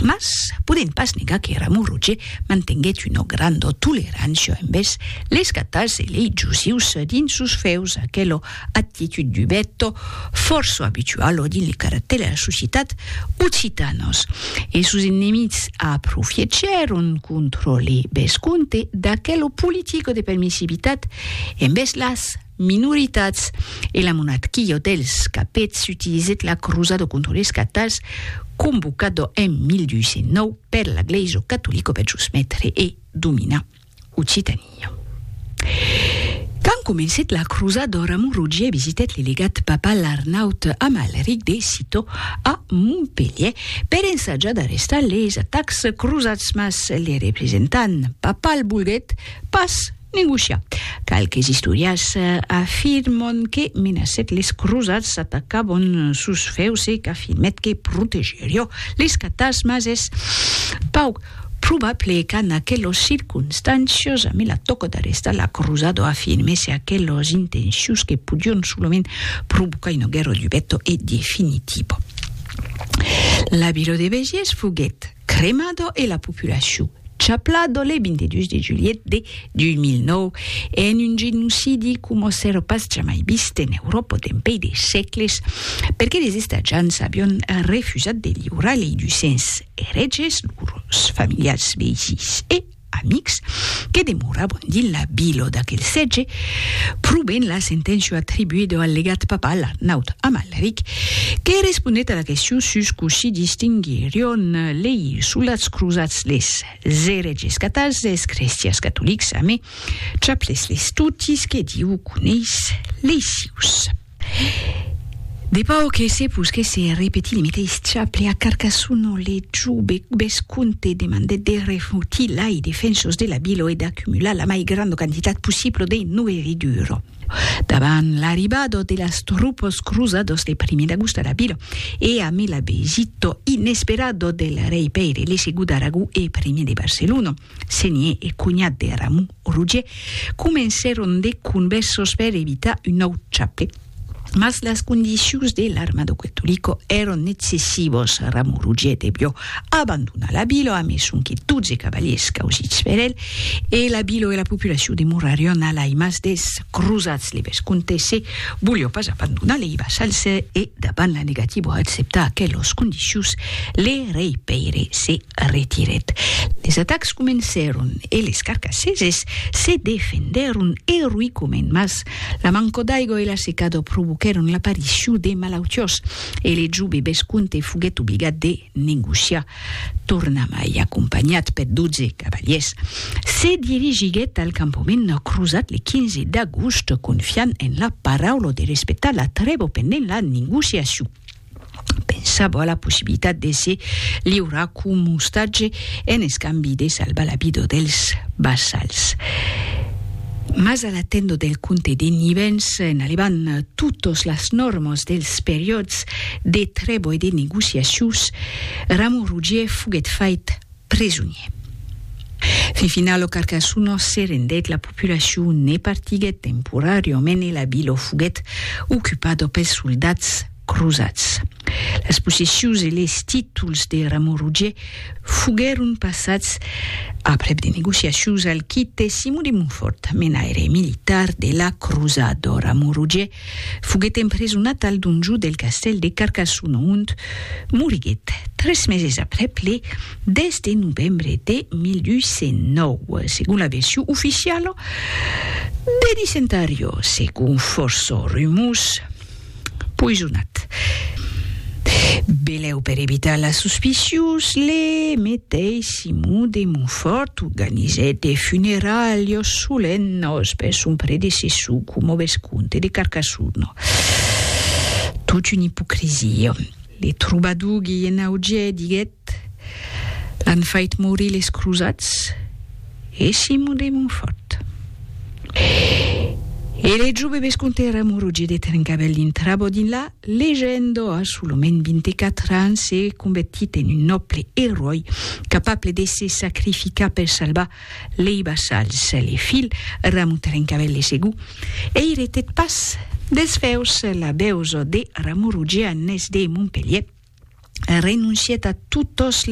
Mas, podent pas negar que Ramon Roger mantenguèt una granda tolerància envèrs leis cataus e lei jusius dins sos fèus, aquela actitud dubèt fòrça abituala dins le caractèr de las societats occitanas. E sos enemics aprofiechèron contra le vescomte d'aquela politica de permissivitat envèrs las. minoritats e la monarquia dels capets utilizèt la crusada contra les catars convocada en 1209 per la glèisa catolica per jusmetre e dominar Occitania. Quand comencèt la crusada, Ramon Rogier visitèt le legat papal Arnaut Amalric de Citeaux a Montpelhièr per ensajar d'arrestar les atacs crusats mas le representant papal volguèt pas Negociar. Qualques istòrias afirmon que menacèt les crosats atacabon sos fèus e qu'afirmèt que protegerió les catas mas es pauc probable qu'an aquelos circonstàncios amé la tòca d'arrestar la crosado afirmèsse aquelos intencius que podion solament provocar una guerra dubèto e definitivo. La vila de Béziers foguèt Cremado e la populacion chapla do le 22 de julhet de 2009 en un genocidi coma s'èra pas jamai vist en Euròpa dempèi de sècles, perque les estatjants avián refusat de liurar lei ducents erètges, lors familiars, veisins e. amics, que demoravan dins la vila d'aquel sètge, probent la senténcia atribuida al legat papal Arnaut Amalric, que responèt a la question sus cossí distinguirion lei soldats crosats les eretges catals des crestians catolics, amé, chaples les totis que Diu coneis lei sius. De pau que se posquèsse repetir le meteis chaple a Carcassonne ont le jove vescomte demandèt de refotir lai defensos de la vila e d'accumular la mai granda quantitat possibla de noeridura. Davant l'arribada de las tropas cruzadas le primier d'agost a la vila e amé la visita inesperada del rei Pèire le segon d'Aragó e primier de Barcelona, senier e conhat de Ramon, O Roger comencèron de convèrsors per evitar un nòu chape. Mas las condicions de l'armado quetolico èron nexcessivos. Ramon Roger devió abandonar la vila amé sonque 12 cavaliers causits per el, e la vila e la populacion demorarion a l'aimas des crosats. Le vescomte se volió pas abandonar lei vassals e, davant la negativa a acceptar aquelos condicions, le rei Pèire se retirèt. Les atacs comencèron e les carcaseses se defendèron eroïcament, mas la manca d'aiga e la secada provoquèron l'aparicion de malautiós e le jove vesconte foguèt obligat de negociar. Tornamai, acompanhat per 12 cavaliers, se dirigiguèt al campament crosat le 15 d'agost, confiant en la paraula de respectar la trèva pendent la negociacion. Pensavo a la possibilitat de se liurar com ostatge en escambi de salvar la vida dels vassals. Mas a la tenda del comte de Nivens, en alevant totas las normas dels periòds de trèva e de negociacions, Ramon Rogier foguèt fait presonier. Fifina lo Carcassuno se rendèt la populacion ne partiguèt temporàriament e la vila foguèt ocupada pels soldats crosats. Las possessions e les títols de Ramon Rogier foguèron passats, aprèp de negociacions, al quite Simon de Montfort, menaire militar de la crosada. Ramon Rogier Foguèt empresonat al donjó del castèl de Carcassona ont moriguèt tres meses aprèp le 10 de novembre de 1809, segon la version oficiala de Dicentario, segon fòrça rumors, poisonat. Belèu per evitar las suspicios, le meteissi. Simon de Montfòrt organizèt de funeralhos solemnos per son predecessor coma vescomte de Carcassona. Tot una ipocrisia. Le trobador Guilhen Augier diguèt, L'an fait morir les crosats e Simon de Montfòrt. E le jove vescomte Ramon Roger de Trencavèl dintrava dinlà Legendo a solament 24 ans se convertit en un nòble eròi capable de se sacrificar per salvar lei vassals. Le filh Ramon Trencavèl de Segur eiretèt pas desfeus la veusa de Ramon Rogianes de Montpelhièr, renoncièt a totas las